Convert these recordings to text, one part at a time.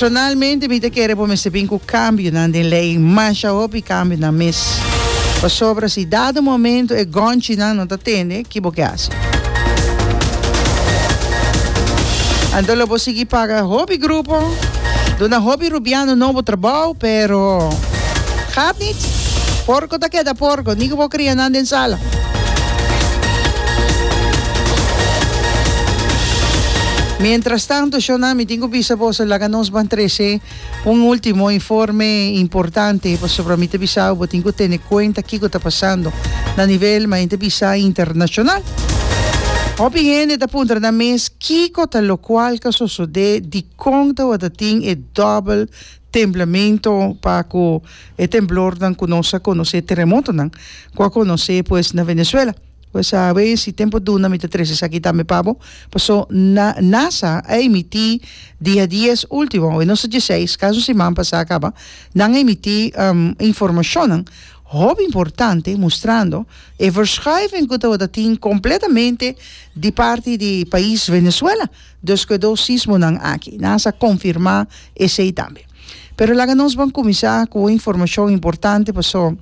Personalmente mi ta kere bo mester bin ku kambionan den lei, masha hopi kambionan mes. Pasobra si dado momento e gònchinan no ta tende, ki bo ke hasi? Anto lo bo sigui paga hopi grupo, duna hopi rubiano nobo trabou, pero gaat nit. Porko ta keda porko, ni ku bo kria nan den sala. Mientrastanto, shownan mi. Tin cu bisa boso laga nos ban trece un ultimo informe importante pasobra mi ta bisau bo tin cu tene cuenta kico ta pasando na nivel maente bisa internacional. Hopi hende ta puntra nan mes kico ta locual ta sosode dicon tawata tin e dobel templamento pa cu e temblornan cu nos a conoce, terremotonan cu a conoce pues na Venezuela. Bo sa a wens y tempo duna mi ta trece esaki tambe pa bo, paso na NASA a emiti di a dies ultimo, hoynos ta dieseis, casi un siman pasa a caba, nan a emiti informacionnan hopi importante mustrando e verschuiving cu tabata tin completamente di parti di pais Venezuela despues dos sismonan aki. NASA a confirma esey tambe. Pero laga nos ban kuminsá ku un informashon importante pasó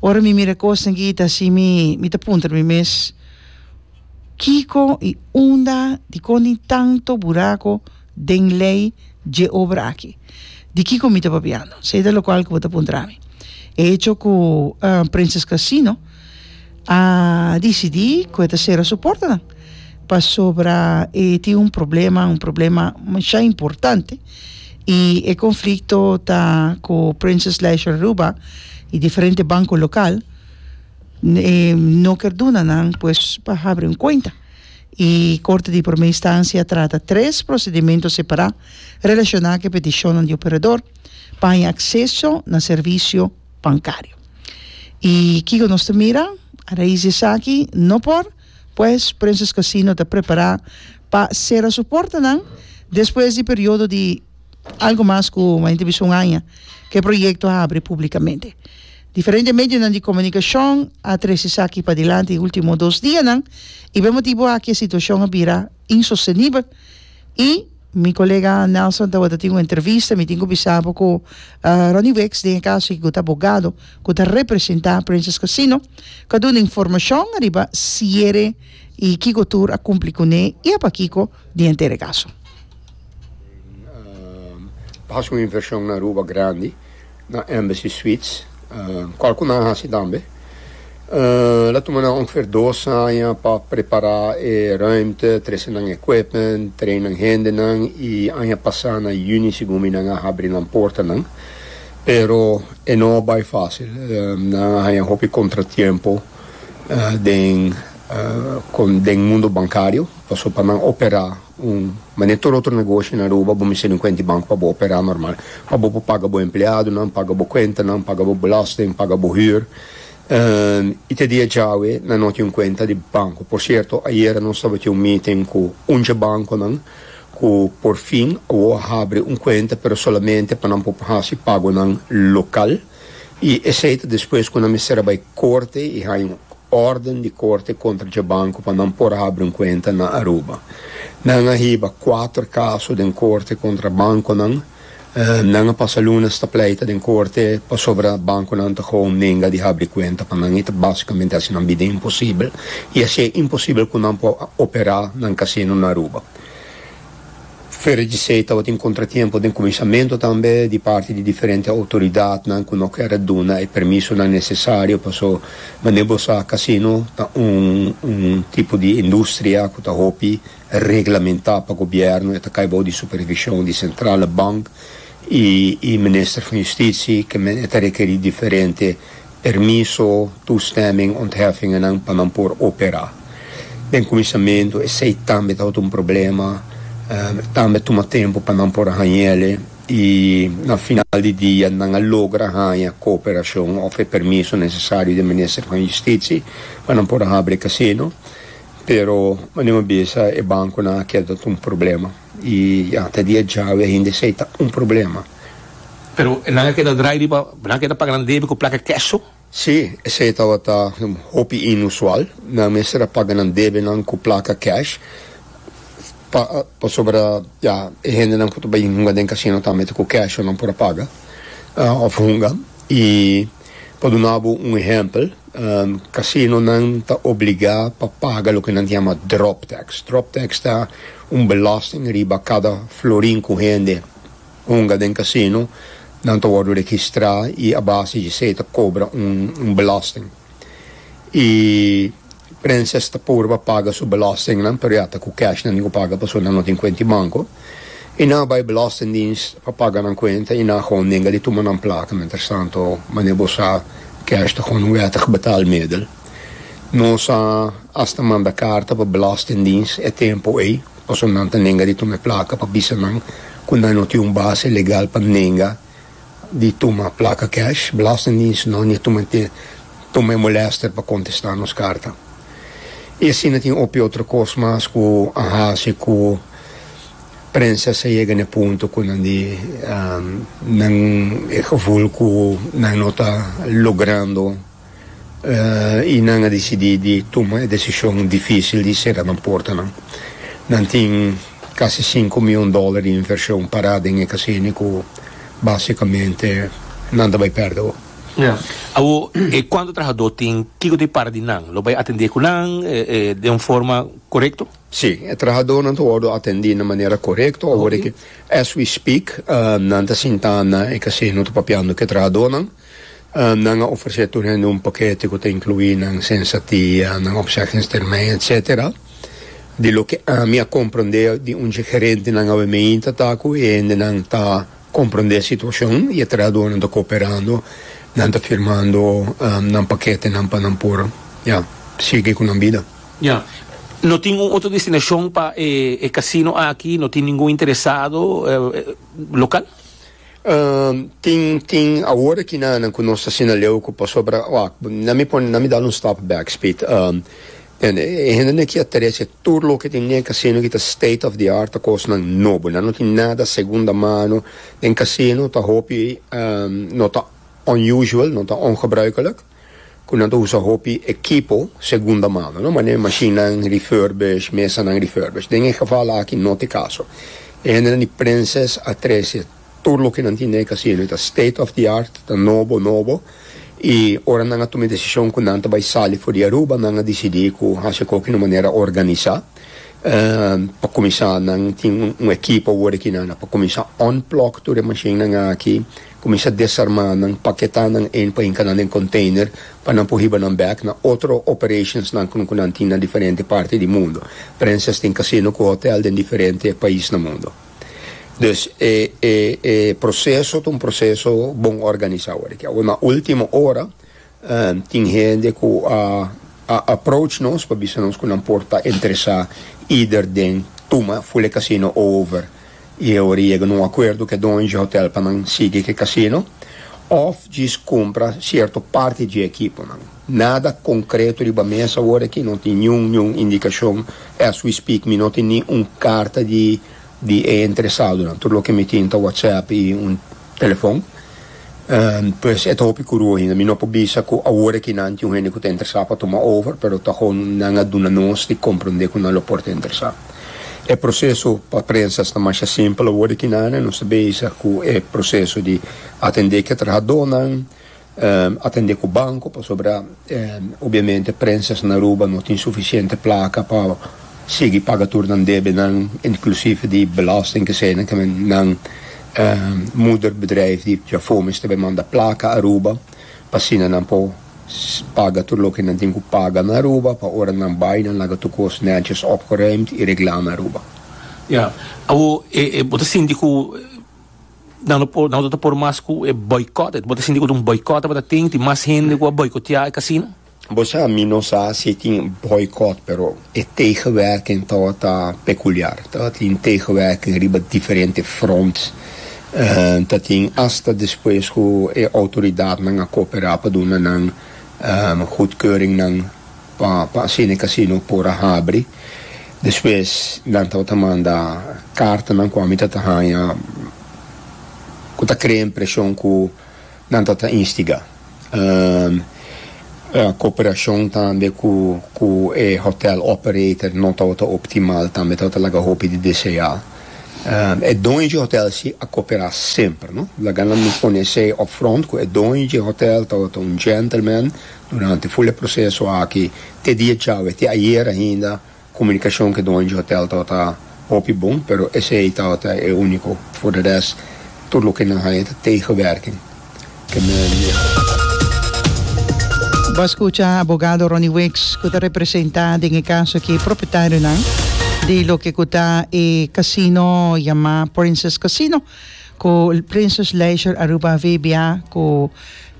ora mi mira e kosnan aki ta así mi mi ta puntra mi mes kiko i unda dikon tin tanto burako den lei dje obra aki? Di kiko mi ta papiando? Esei ta lokual ku bo ta puntra mi. E hecho ku Princess Casino a disidí ku e ta sera su portanan pasobra e tin un problema un problema masha importante. y e conflicto ta cu Princess Leisure Aruba y diferente banco local no ker duna nan pues pa habri un cuenta y Corte di Primer Instancia trata tres procedimento separa relaciona cu e peticionnan di operador pa haña acceso na servicio bancario y kico nos ta mira a rais di esaki no por Pues, Princess Casino ta prepará pa sera su portanan despues di periodo di algu mas ku un hende bisa un aña ku e proyekto a abri públikamente. Diferente medionan di komunikashon a trese esaki padilanti e último dos dianan i p'e motibu aki e situashon a bira. insostenibel y mi colega Nelson tawata tin un entrevista mi tin cu bisa bo cu Ronnie Wicks den e caso aki cu ta abogado cu ta representa Princess Casino cu a dun'e informacion ariba cierre y kico tur a cumpli cu n'e y apa kico di enter e caso. Haci un inversion na Aruba grandi. Na Embassy Suites, kòl ku nan a hasi tambe. Ta tuma nan ongefeer dos aña pa prepará e rùimte, trese nan equipment, train nan hendenan i aña pasá na yüni segun mi nan a habri nan portanan. Pero e no a bai fásil. Nan a haña hopi kontratiempo den den mundu bankario pasobra pa nan operá. Mane tur otro negoshi na Aruba bo mester tin un kuenta di banko pa bo operá normal, pa bo por paga bo empleadonan, paga bo kuentanan, paga bo belasting, paga bo hür. I te dia djawe nan no tin un kuenta di banko. Por sierto, ayera nos tabatin un meeting ku un dje bankonan ku por fin a wou a habri un kuenta, pero solamente pa nan por hasi pagonan lokal. I esei ta despues ku nan mester a bai korte i haña un órden di korte kontra dje banko pa nan por habri un kuenta na Aruba. Nan a hiba kuater kaso den korte kontra bankonan. Nan a pasa lunas ta pleita den korte pasobra bankonan ta kobo nenga di habri kuenta pa nan i ta básikamente hasi nan bida imposibel i hasi e imposibel ku nan por operá nan kasino na Aruba. Fere di esei tabatin kontratiempo den kumensamentu tambe di parti di diferente outoridatnan ku no kere duna e permisonan nesesario paso manera bo sa kasino ta un un tipo di industria ku ta hopi reglamentá pa gobièrnu e ta kai bou di supervishon di Sentrale Bank i i Minister van Yustitie ke men e ta rekerí diferente Permiso, toestemming, ontheffingennan pa nan por operá. Den kuminsamentu esei tambe tabata un problema, tambe tuma tempu pa nan por haña el'e i na final di dia nan a logra haña kooperashon òf e permiso nesesario den Minister van Justitsi pa nan por habri e kasino, pero maniuma bisa e bankonan a keda ta un problema i ya ta di e djawe ainda esei ta un problema. Pero nan a keda drai riba, nan a keda paga nan debi ku plaka keso? Sí, esei tabata hopi inusual. Nan mester a paga nan debinan ku plaka kesh, pa pasobra ya e hendenan ku ta bai hunga den kasino ta mete ku kesh so nan por a paga òf hunga. I pa duna bo un ehèmpel, kasinonan ta obligá pa paga loke nan ta yama drop tax. Drop tax ta un belòsting riba kada florin ku hende Hunga den casino nan ta wordo registra y a base di esey ta cobra un belasting. Y Princess ta purba paga su belasting nan pero ya ta cu cash nan tin cu paga pasobra nan no tin cuenta di banco. Y nan a bay belastingdienst pa paga nan cuenta y nan a gewoon denga di tuma nan placa. Mientras tanto mane bo sa cash ta gewoon un wettig betalmiddel. Nos a hasta manda carta pa belastingdienst e tempo ey. Pasobra nan ta nenga di tuma e plaka pa bisa nan ku nan no tin un base legal pa nenga di tuma plaka cash. Belastingdiens no ni tuma te tuma e molèster pa kontestá nos karta. I asina tin hopi otro kos mas ku a hasi ku prensa sa yega na e punto ku nan di nan e gevul ku nan no ta logrando I nan a disidí di tuma e desishon difísil di sera nan portanan. Nan tin kasi sinku mion dóla di invershon pará den e kasini ku básikamente nan ta bai pèrdè bo. Awor, e kuantu trahadó tin, kiko ta bai parti di nan? Lo bai atendé ku nan den un forma korekto? Sí, e trahadónan ta wòrdu atendí na manera korekto. Awor, as we speak, nan ta sintá na e kasino ta papiando ku e trahadónan. Nan a ofresé tur hende un pakete ku ta inkluí nan sensatia, nan opzeggingstermijn, etsetera. Di loke ami a komprondé di un dje gerentenan awe meinta ta ku e hendenan ta komprondé e situashon i e trahadónan ta kooperando, nan ta firmando nan paketenan pa nan por, ya, sigui ku nan bida. Ya. No tin un otro destinashon pa e kasino aki? No tin ningun interesado lokal? Um, tin, tin, awor aki na, na ku nos ta sina leu ku pasobra, wak, na mi pone, na mi dal un stap bek, Speed, um, tende, e, e hendenan aki a trece tur loke tin den casino aki ta state of the art, ta kosnan nobo, nan no tin nada segunda mano, den casino ta hopi, um, no ta unusual, no ta ongebruikelijk. ku nan ta usa hopi ekipo segunda mano, no manera mashinnan refurbish, mesanan refurbish. Den e geval aki no ta e kaso. E hendenan di Princes a trese tur loke nan tin den e kasino, i ta state of the art, ta nobo nobo, i ora nan a tuma e desishon ku nan ta bai sali for di Aruba, nan a disidí ku hasi akoba di un manera organisá. Pa kuminsá, nan tin un ekipo awor aki nan a pa kuminsá unplug tur e mashinnan aki. Kuminsá desarmá nan, paketá nan ein pa hinka nan den konteiner pa nan por hiba nan bèk na otro operashonsnan ku ku nan tin na diferente parti di mundu. Prensas tin kasino ku hotèl den diferente pais na mundu. Dus e e e proseso ta un proseso bon organisá. Awor di ki awor na último ora Tin hende ku a approach nos pa bisa nos ku nan por ta interesá either den tuma Fule Casino over i e ora yega un akuerdo ku e doño dje hotèl pa nan sigui ku e kasino òf djis kumpra sierto parti dje ekiponan. Nada konkreto riba mes awor aki, no tin niun niun indikashon. As we speak mi no tin ni un karta di di e interesadonan. Tur loke mi tin ta whatsapp i un. telefon, pues e ta hopi kuru ainda. Mi no por bisa ku awor aki nan tin un hende ku ta interesá pa tuma over, pero ta kon nan a duna nos di komprondé ku nan lo por ta interesá. E proseso pa prensas ta masha simpel awor aki nan, nos ta bisa ku e proseso di atendé ki e trahadónan, Atende ku banko pasobra obiamente prensas na Aruba no tin sufisiente plaka pa sigui paga tur nan debenan inklusief di belosting kesei ke nan moeder bedrijf di Jafómez ta bai manda plaka Aruba pa asina nan por paga tur loke nan tin ku paga na Aruba pa ora nan bai nan laga tur kos nètjes opgeruimd i reglá na Aruba. Ya. Awor bo ta sinti ku Nan lo por, nan lo ta por mas ku e boikot. Bo ta sinti ku ta un boikot tabata ta tin, tin mas hende ku a boikotea e kasino? Bo sa, mi no sa si e tin boikot, pero e tegenwerking tabata pekuliar. Tabatin tegenwerking riba diferente fronts. Ta tin asta despues ku e outoridatnan a koperá pa duna nan gudkeuringnan. Pa pa asina e casino por a habri. Despues nan tabata manda cartanan cu ami tata hanja cu ta crea impresion cu nan tata instiga cooperacion tambe cu cu e hotel operator no tabata optimal tambe tabata laga hopi di desea. E doño dje hotel si a coopera semper no laga nan pone esey upfront cu e doño dje hotel tabata un gentleman Durante ful e proseso aki, te dia djawe, te ayer ainda, komunikashon ku dueño di hotel tabata hopi bon, pero esei tabata e úniko. For de rest, tur loke nan haña ta tegenwerking. Ke men di. Bo a skucha abogado Ronnie Weeks ku ta representá den e kaso aki e propietarionan di loke ku ta e kasino yamá Princess Casino ku Princess Leisure Aruba VBA ku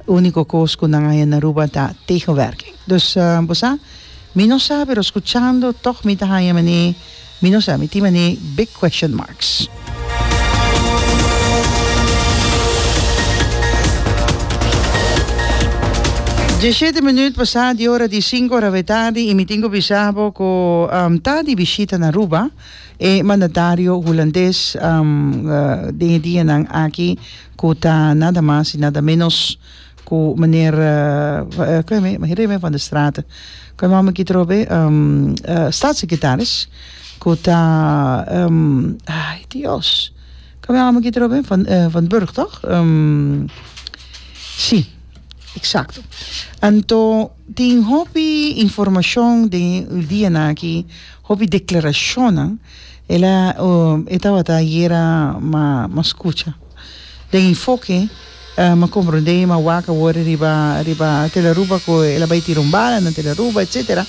Úniko kos ku nan a hende na Aruba ta tegenwerking. Dus bo sa, mi no sa, pero skuchando tòg mi ta haña manei, mi no sa, mi tin manei big question marks. Diesshete minuut pasá di ora di sinku ora we tardi i mi tin ku bisa bo ku ta di bishita na Aruba e mandatario hulandes den e dianan aki. ku ta nada mas i nada ménos ku meneer Remy van der Straat, ku e nòmber ki ta ròp e? Staatssekretaris ku ta, ai Dios, ku e nòmber ki ta ròp e? Van Van Burg tòg? Si, eksakto. Anto tin hopi informashon den e dianan akí, hopi deklarashonnan. El a e tabata yera ma ma skucha. Den e foke m'a komprondé ma wak a wòrdu riba riba Tel Aruba ku el a bai tira un bala na Tel Aruba etsetera.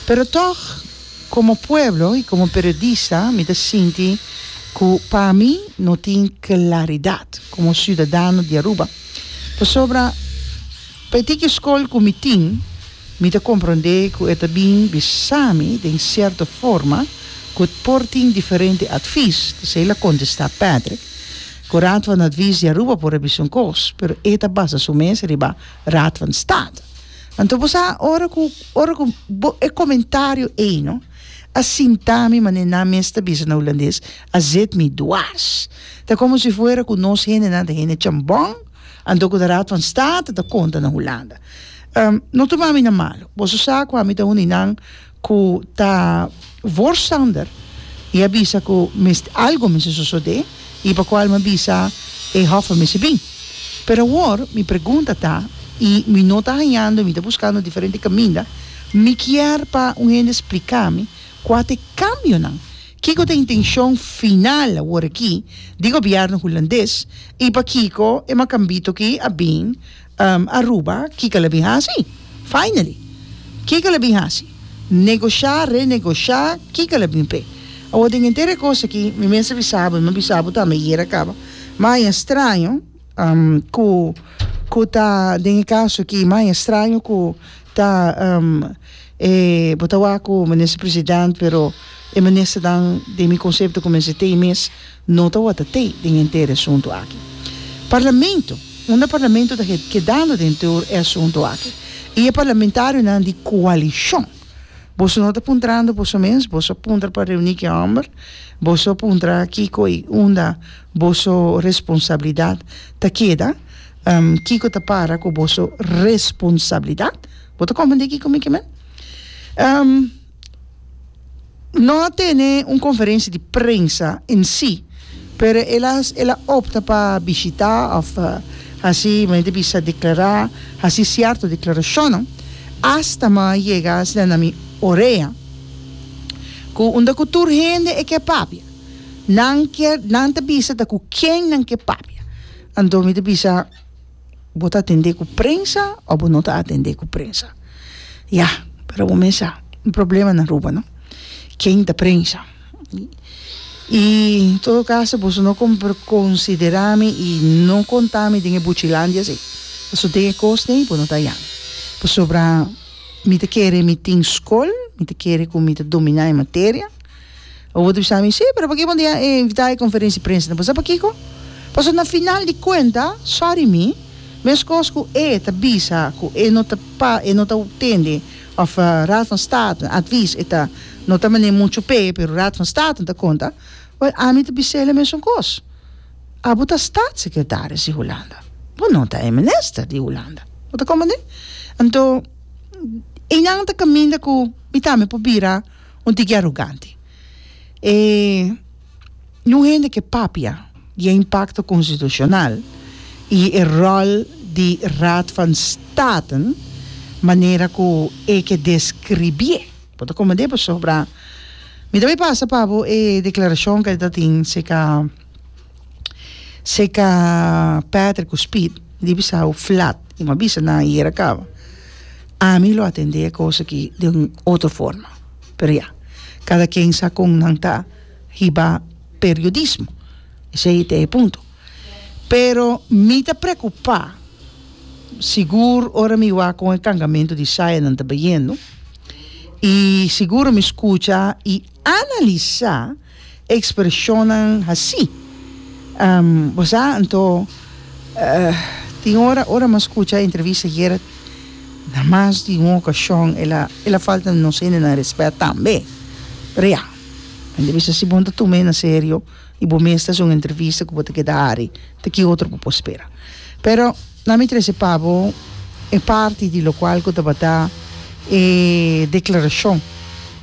Pero tòg komo pueblo i komo periodista mi ta sinti ku pa mi no tin klaridat komo siudadano di Aruba pasobra. P'e tiki skol ku mi tin, mi ta komprondé ku e ta bin bisa mi den sierto forma ku t por tin diferente atvis, kuzei el a kontestá Patrick, Ku Raad van Advies di Aruba por a bisa un kos, pero e ta basa su mes riba Raad van State. Anto bo sa, ora ku ora ku bo e komentario ei no a sinta mi manera nan mes ta bisa na hulandes, a zet mi dwars. Ta komo si fuera ku nos hendenan ta hende chambon. Anto ku ta Raad van State ta konta na Hulanda. No tuma mi na malu. Boso sa ku ami ta un di nan ku ta voorstander i a bisa ku mes algu mester sosodé i pa kua mi a bisa e hof a mester bin. Pero awor mi pregunta ta i mi no ta hañando i mi ta buskando diferente kaminda, mi kier pa un hende splika mi kua ta e kambionan. Kiko ta intenshon final awor aki di gobièrnu hulandes i pakiko e makambito aki a bin Aruba? Kiko el a bin hasi finally? Kiko el a bin hasi? Negoshá, renegoshá, kiko el a bin p'e? Awor den henter e kos aki mi mester bisa bo i mi a bisa bo tambe, e yera kaba, maia straño. ku ku ta den e kaso ki mas estraño ku ta e bo ta wak ku minister president pero e ministernan den mi konsepto ku mester tei mes no ta wòrdu tei den henter e asuntu aki parlamento unda parlamento ta kedando den tur e asuntu aki i e parlamentarionan di koalishon boso no ta puntrando boso mes boso puntra pa reuni ki hòmber boso puntra kiko i unda. Boso responsabilidad ta keda. Kiko ta para ku boso responsabilidad? Bo ta komprendé kiko mi ke men? No a tene un konferensia di prensa en si, pero el a el a opta pa bishitá òf hasi mi ta bisa deklará hasi sierto deklarashonnan asta mi a yega a haña na mi orea ku unda ku tur hende e ke papia. Nan kier nan ta bisa ta ku ken nan ke papia anto mi ta bisa bo ta atende ku prensa o bo no ta atende ku prensa ya pero bo mes sa un problema na Aruba no ken ta prensa i en todo kaso boso no kon konsidera mi i no konta mi den e buchilandia si paso den e kos dei bo no ta yami pasobra mi ta kere mi tin skol mi ta kere ku mi ta domina e materia. Bo ta bisa mi, sí, pero p'kiko bo no ta invitá e konferenshi prensa? Bo sa p'kiko? Pasobra na final di kuenta, sòri mi, meskos ku e ta bisa ku e no ta pa, e no ta tende òf Raad van State advis e ta, no ta manera muchu p'e, pero Raad van State ta konta, wèl, ami ta bis'el e mesun kos. Abo ta Statssekretaris di Hulanda, bo no ta e minister di Hulanda. Bo ta komprendé? Anto, einan ta kaminda ku mi tambe por bira Un tiki arugante. E na un hende ke papia di e impakto konstitushonal i e ròl di Raad van Staten manera ku e ke deskribié. Bo ta komend'é pasobra mi ta bai pasa pa bo e deklarashon ku e ta tin, seka. seka Patrick cu Speed di bisa awo flat y mi a bisa nan ayer a caba ami lo atende e cosa aki den un otro forma pero ya cada quien sa con nan ta hiba periodismo esey ta e punto pero mi ta preocupa sigur ora mi wak con e cargamento di sajanan ta bayendo y seguro mi scucha y analisa Expresionnan haci bo sa anto tin ora ora mi a scucha entrevista di Gerard na mas di un ocasion el a el a falta nos hendenan respet tambe pero ya mi ta bisa si bo no ta tume na serio y bo mes ta haci un entrevista cu bo ta keda hari ta ki otro bo por spera pero nan mi trece pa bo e parti di locual cu tabata e declaracion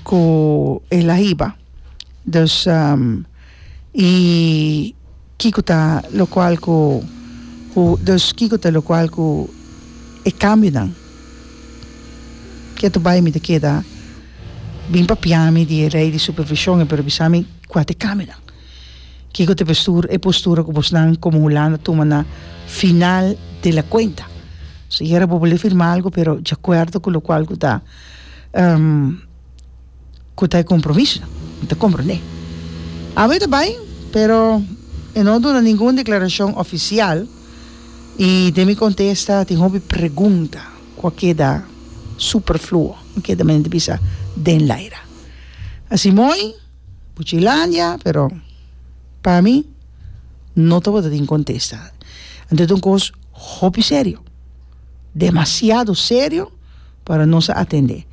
cu el a hiba. Dus i kiko ta lokual ku ku dus kiko ta lokual ku e kambionan ke ta bai mi ta keda bin papia mi di e rei di supervishon e por bisa mi kua ta e kambionan kiko ta e postura ku bos nan komo Hulanda tuma na final di la kuenta so yera bo bo le firma algu pero di akuerdo ku lokual ku ta. ku ta e kompromiso nan. Mi ta komprendé. Awe ta bai, pero e no duna ningun deklarashon ofisial i den mi kontesta tin hopi pregunta ku a keda superfluo, a keda men di bisa den laira. Asi moi, Buchilandia, pero pa mi no tabata tin kontesta. Anto ta un kos hopi serio. demasiado serio para nos a atende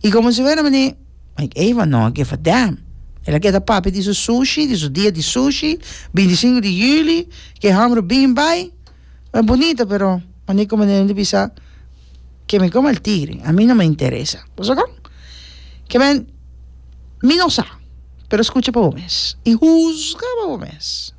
y como si fuera manera like Eva no a give a damn el a kier ta papia di su sushi di su dia di sushi bintisingu di juli ke hòmber bin bai ta bunita pero manera como nel a bisa ke mi koma el tigre a mi no me interesa pasobra kon? Ke men mi no sa pero skucha pa bo mes y huzga pa bo mes.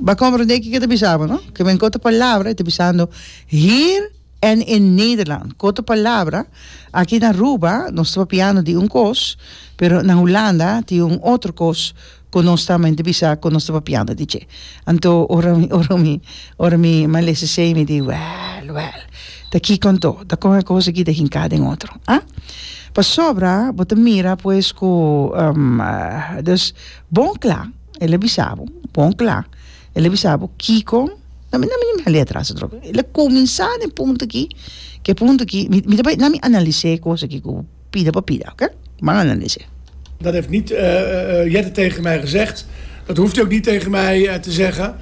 B'a komprondé kiko e ta bisa bo no? Ke men ku otro palabra e ta bisando Hier en in Nederland. Ku otro palabra aki na Aruba nos ta papiando di un kos, pero na Hulanda tin un otro kos ku nos ta mente bisa ku nos ta papiando di dje. Anto ora mi ora mi ora mi a lesa esei mi di wèl wèl ta kiko anto ta kon e kos aki ta hinká den otro a? Pasobra bo ta mira pues ku dus bon kla. el a bisa bo bon kla el a bisa bo kiko na mi na mi a lea tras otro el a kuminsá den e punto akí ke e punto akí mi ta bai na mi analis'é e kos akí ku pida pa pida oke ban analis'é. Dat heeft niet Jette tegen mij gezegd, dat hoeft hij ook niet tegen mij te zeggen.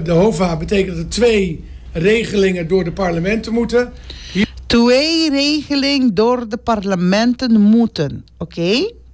De hova betekent dat er twee regelingen door de parlementen moeten. Twee regeling door de parlementen moeten, oké.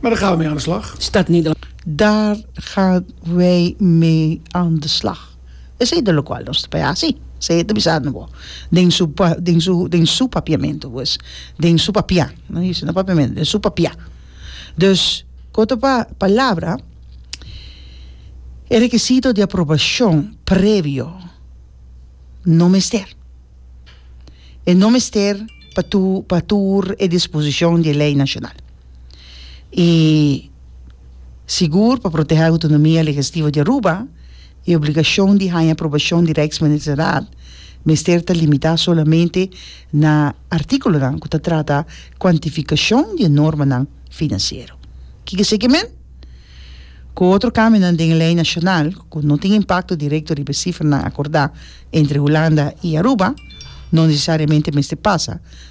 Daar gaan we mee aan de slag. Stad Nederland. Daar gaan we mee aan de slag. Esei ta lokual nos ta bai hasi. Esei e ta bisando bo den su den su den su papiamentu pues, den su papia, no isi na papiamentu, den su papia. Dus ko ta pa palabra, e rekisito di aprobashon previo no mester. E no mester pa tur pa tur e disposishon di e lei nashonal. y sigur pa protehá autonomia legestivo di Aruba, e obligashon di haña aprobashon di Rijksmyndighedsraad mester ta limitá solamente na artíkulonan ku ta trata kuantifikashon di e normanan finansiero. Kiko eseki men? Ku otro kambionan den e lei nashonal ku no tin impakto direkto riba e sifernan akordá entre Hulanda y Aruba, no nesesariamente mester pasa,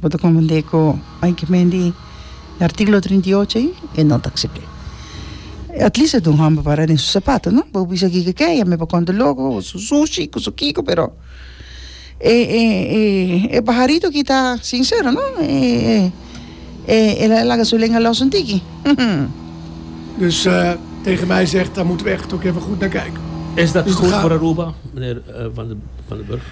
Bo ta comprende cu hay que mendi e articulo trinta y ocho ayi? E no ta accepta. At least e dun home pa para den su sapato, no? Bo bisa aki keke ya me pa con ta loco, o su sushi, cu su kico, pero e pajarito aki ta sincero, no? E la laga su lenga los un tiki, humm. Dus tegen mij zegt dat moet weg, tok even goed naar kijken. Is dat goed voor Aruba, mijnheer Van den Burg?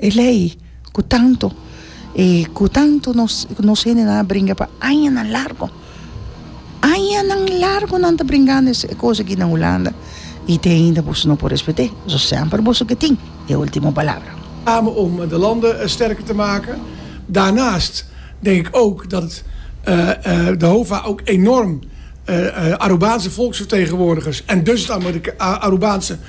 e lei ku tantu e ku tantu nos nos hendenan a bringa pa añanan largu añanan largu nan ta bringando e kos aki na hulanda i te ainda boso no por respet'é so semper boso ke tin e ultimo palabra. Name om de lande sterker te make. Daarnaast denk ik ook dat de hova ook enorm Arubaanse volksvertegenwoordigers en dus het Arubaanse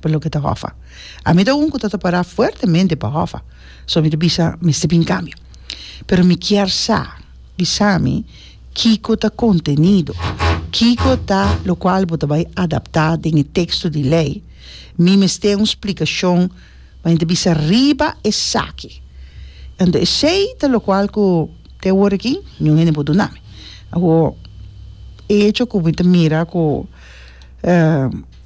pa loke ta hòfa. Ami ta un ku ta ta pará fuertemente pa hòfa, so mi ta bisa mester bin kambio. Pero mi kier sa, bisa mi kiko ta kontenido, kiko ta lokual bo ta bai adaptá den e teksto di lei, mi mester un splikashon bai ta bisa riba esaki. Anto esei ta lokual ku te awor aki niun hende por duna mi. Awor e hecho ku mi ta mira ku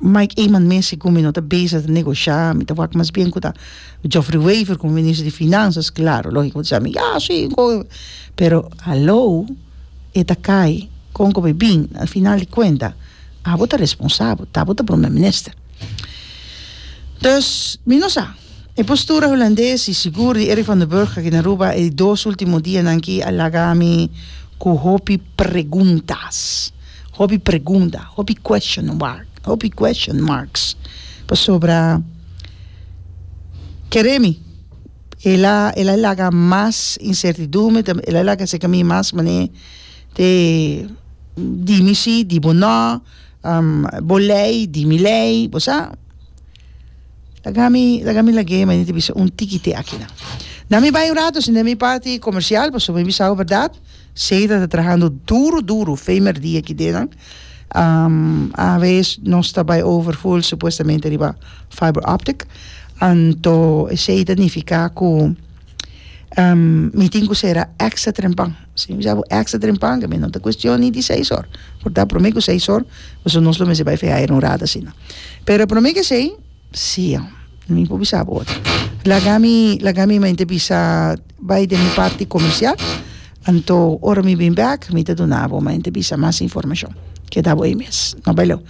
Mike Eman mes i cu mi no ta bezig di negoshá, mi ta wak mas bien cu ta Geoffrey Wever como minister di Finanzas, claro, lógico, mi ta bisa ya si, un coge, pero haló, e ta cay con cu bo e bin, na e final di cuenta abo ta responsabel, ta bo ta Promer Minister. Dus, mi no sa. E postura Hulandes y sigur di Eric van den Burg aki na Aruba e dos ultimo dianan aki a laga mi cu hopi preguntas, hopi pregunta, hopi question mark, hopi question marks pasobra kere mi el a el a laga mas incertidumbre tambe el a laga esaki mi mas mane te dimi si di bo no bo ley di mi ley bo sa. laga mi lag'e mi ta bisa un tikiti akina na mi bai un rato shina mi parti comercial pasobra mi bisabo berdad seda ta trahando duro duro fe merdi aki dina aves nos ta bai over full supuestamente riba fiber optic anto esei ta nifica cu mi tin cu cera extra trempan Si mi sa bo extra dren panga mi no ta cuestion ni di seis or por ta prome cu seis or pasobra nos lo mester bay fe hire un rato asina pero prome cu esey si ho mi por bisa bo otro laga mi laga mi mente bisa bay den mi parti comercial anto ora mi bin back mi ta duna bo mente bisa mas informacion keda bo ayi mes no bay lew.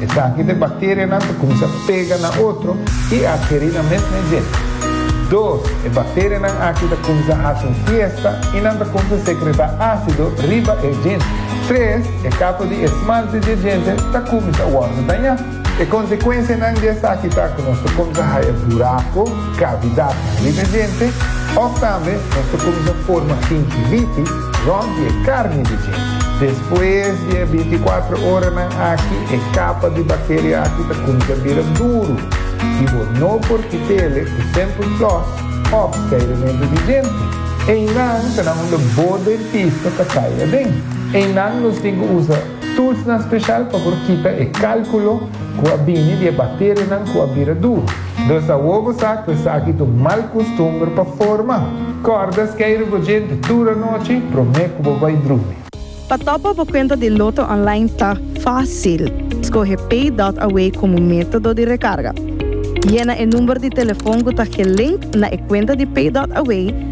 Esaki ta e bacterianan ta cuminsa pega na otro y a keri na mes mes dje. Dos, e bacterianan aki ta cuminsa haci un fiesta y nan ta cuminsa secreta acido riba e djente. Tres, e capa di esmalte di e djente ta cuminsa wordo daña. E consecuencianan di esaki ta cu nos ta cuminsa haya buraco, cavidadnan, riba e djente of tambe nos ta cuminsa forma gingivitis, Rònt di e karni di dje. Despues di e bintikuatro oranan aki, e kapa di bakteria aki ta kuminsá bira duru i bo no por kit'e ku sèmpel flòs òf kairementu di djenti. Einan ta na unda bo dentista ta kai aden. Einan nos tin ku usa. Toolsnan special pa por kita e calculo cu a bini di e bacterianan cu a bira duru. Dus awor bo sa cu esaki t'un mal custumber pa forma. Corda scay rugogente tur anochi prome cu bo bay drumi. Pa topa bo cuenta di Lotto online ta facil. Scoge PayDotAway como metodo di recarga. Yena e number di telefon cu ta gelink na e cuenta di PayDotAway.